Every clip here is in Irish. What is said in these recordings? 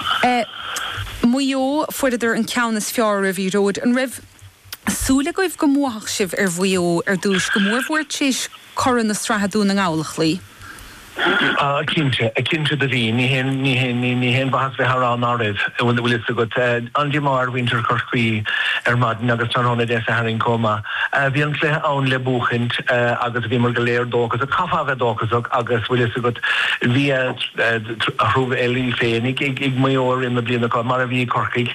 I Maigh Eo, fuaireadar an ceann is fearr oraibh, a Ghearóid. An raibh súil agaibh go mbuafadh sibh ar Mhaigh Eo ar dtúis, go mór mhór tréis curaidh na sraithe Dún na nGall a chloí? Cinnte, cinnte do bhí. Ní haon, ní haon, ní, ní haon mhaitheas bheith a rá ná raibh, an bhfuil, an bhfuil fhios agat. An-díomá ar mhuintir Chorcaí ar maidin agus tráthnóna Dé Sathairn comh maith. Bhí an cluiche ann le buachaint agus bhíomar go léir dóchasach, chaithfeá a bheith dóchasach agus bhfuil fhios agat, bhí, Tharla éiginnteacht ag Maigh Eo i rith na bliana seo, mar a bhí i gCorcaigh,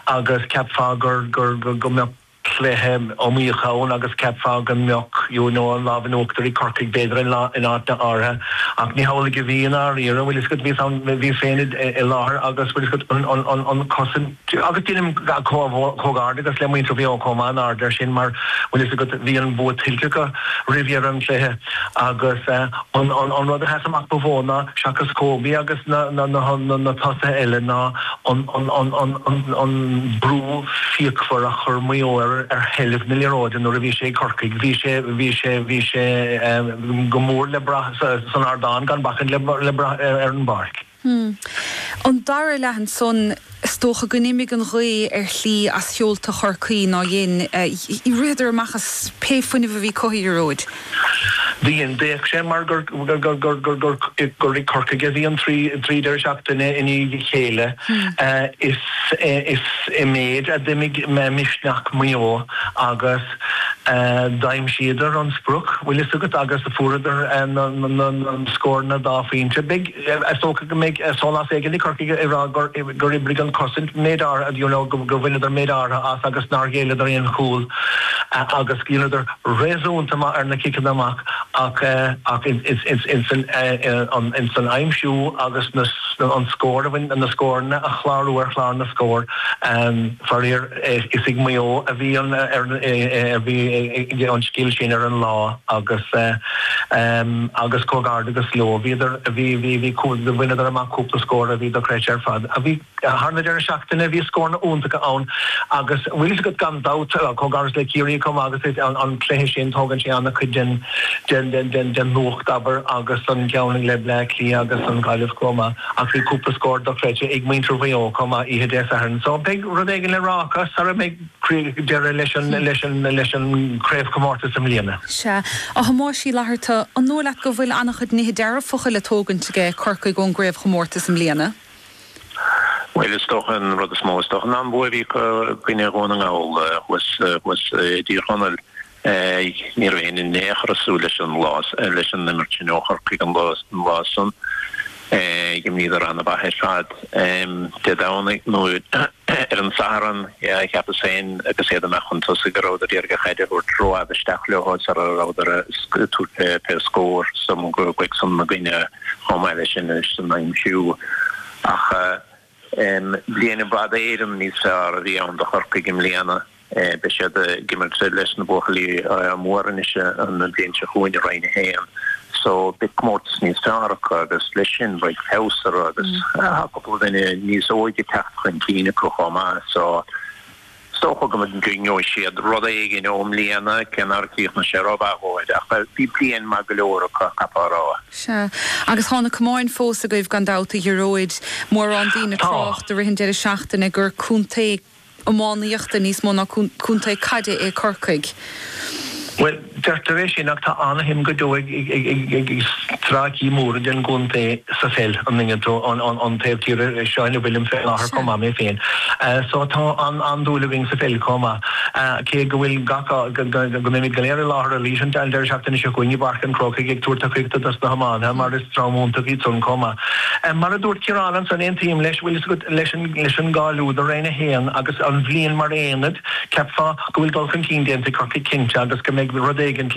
agus cheapfá go mbeadh cluiche iomaíocha ann agus cheapfá go mbeadh an lámh in uachtar ag Corcaigh b'fhéidir in áiteanna áirithe ach ní hamhlaidh a bhí i ndáiríre. Bhuel, is bhíos ann, bhíos féin i láthair agus bhuel, an chosaint. Agus deinim comhghairdeachas le muintir Mhaigh Eo chomh maith, ar ndóigh ar sin, mar, bhfuil a fhios agat, bhí an bua tuillte acu roimh dheireadh an chluiche agus an rud a sheas amach ba mhó ná, seachas Kobe agus na tosaithe eile, ná an brú fíochmhar a chuir Maigh Eo ar sheilbh na liathróide nuair a bhí sé ag Corcaigh. Bhí sé, bhí sé, bhí sé go mór le brath san ardán, gan bacaint le brath ar an bpáirc. Hmm. An dara leath ansan, is dócha gur imigh an ghaoth ar shlí as sheolta Chorcaí, ná dhein? Ritheadar amach as pé fuinneamh a bhí acu, a Ghearóid. Bhí, d'fhéach sé mar gur ag Corcaigh a bhí an trí deireadh seachtaine i ndiaidh a chéile. Is i méid a d'imigh misneach Mhaigh Eo agus d'aimsíodar an sprioc, bhfuil fhios agat, agus fuaireadar na scóranna dá phointe. is dócha go mbeidh sólás éigin ag Corcaigh ag rá gur oibrigh an chosaint méid áirithe you know go go bhaineadar méid áirithe as agus nár ghéilleadar aon chúl agus go dheineadar réasúnta maith ar na ciceanna amach ach ach ins ins ins an an ins an aimsiú agus na an scór a bhain na scóranna a chlárú ar chlár na scór faraor Is ag Maigh Eo a bhí an scil sin ar an lá agus agus comhghairdeachas leo bhíodar, bhaineadar amach cúpla scór a bhí dochreidte ar fad. Thar an deireadh seachtaine bhí scóranna iontacha ann agus bhfuil fhios agat gan dabht comhghairdeas le Ciarraí chomh maith agus is an cluiche sin tógann sé ana-chuid den den den den luach, abair, agus an ceann le Bleá Cliath agus an Ghaillimh chomh maith. Ach bhí cúpla scór dochreidte ag muintir Mhaigh Eo chomh maith oíche Dé Sathairn so beidh rud éigin le rá acu sara mbeidh deireadh leis an chraobhchomórtas i mbliana. Sea, a Thomáis Uí Fhlatharta, an dóigh leat go bhfuil an-chuid nithe dearfacha le tógaint aige Corcaigh ón gcraobhchomórtas i mbliana? Bhuel, is dócha an rud is mó, is dócha, ná an bua a bhí acu i gcoinne Dhún na nGall thuas i dTír Chonaill. Ní raibh éinne in aon chor ag súil leis an lá, leis an imirt sin ó Chorcaigh an lá san. D'imríodar an-mhaith ar fad Dé Domhnaigh, nó ar an Satharn, cheapas féin agus iad amach chun tosaigh go rabhadar ag iarraidh an chaid a thabhairt rófhada isteach leo sara rabhadar ag tabhairt fé scór san, gur chuaigh san ina gcoinne chomh maith leis sin insan aimsiú ach. Bliain i bhfad Éireann níos fearr a bhí ann do Chorcaigh i mbliana. Beidh siad ag imirt leis na buachaillí móra anois an bhliain seo chugainn i Roinn 1 so beidh comórtas níos fearr acu agus leis sin beidh feabhas orthu agus tá cúpla duine níos óige ag teacht chun cinn acu chomh maith so Is dócha go ngeobhaidh siad rud éigin ón mbliain cé nár chríochnaigh sé rómhaith dhóibh, ach bhí bliain maith go leor acu, chaithfeá a rá. Sea. Agus tá na camáin fós agaibh gan dabht, a Ghearóid. Mórán daoine ag trácht i rith an deireadh seachtaine gur contae iománaíochta níos mó ná contae caide é Corcaigh. Bhuel, Deirtear é sin ach tá an-shuim go deo ag stráicí móra den gcontae sa pheil, an Aonad an taobh tíre seo ina bhfuilim fé láthair chomh maith mé féin so tá an-dúil againn sa pheil comh maith cé go bhfuil go, go mbeimid go léir i láthair arís an deireadh seachtaine seo chugainn i bPáirc an Chrócaigh ag tabhairt tacaíochta dos na hiománaithe mar is dream iontach iad san comh maith. Mar a dúirt Ciarán ansan aontaím leis leis an gcáiliú do Roinn a hAon agus an bhliain mar aonad Cheapfá go bhfuil dul chun cinn déanta ag Corcaigh cinnte agus go mbeidh rud éigin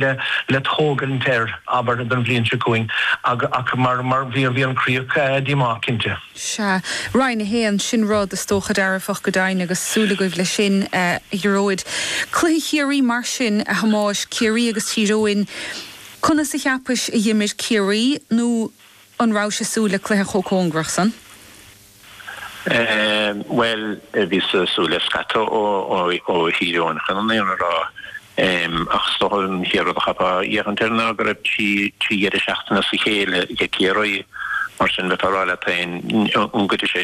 le tógaint air, abair, don bhliain seo chugainn ach mar bhí an chríoch díomách cinnte. Sea, Roinn 1, sin rud, is dócha, dearfach go deimhin agus súil agaibh leis sin, a Ghearóid. Cluiche Chiarraí mar sin, a Thomáis, Ciarraí agus Tír Eoghain, conas a cheapais a dh'imir Ciarraí nó an rabhais ag súil le cluiche chomh cóngarach san? Bhuel, bhíos ag súil le scata ó Thír Eoghain chun an fhírinne a rá, ach is dócha an chéad rud a chaithfeá féachaint air ná go raibh trí dheireadh seachtaine as a chéile ag Ciarraí, mar sin bheifeá ag rá leat féin, an gcuirfidh sé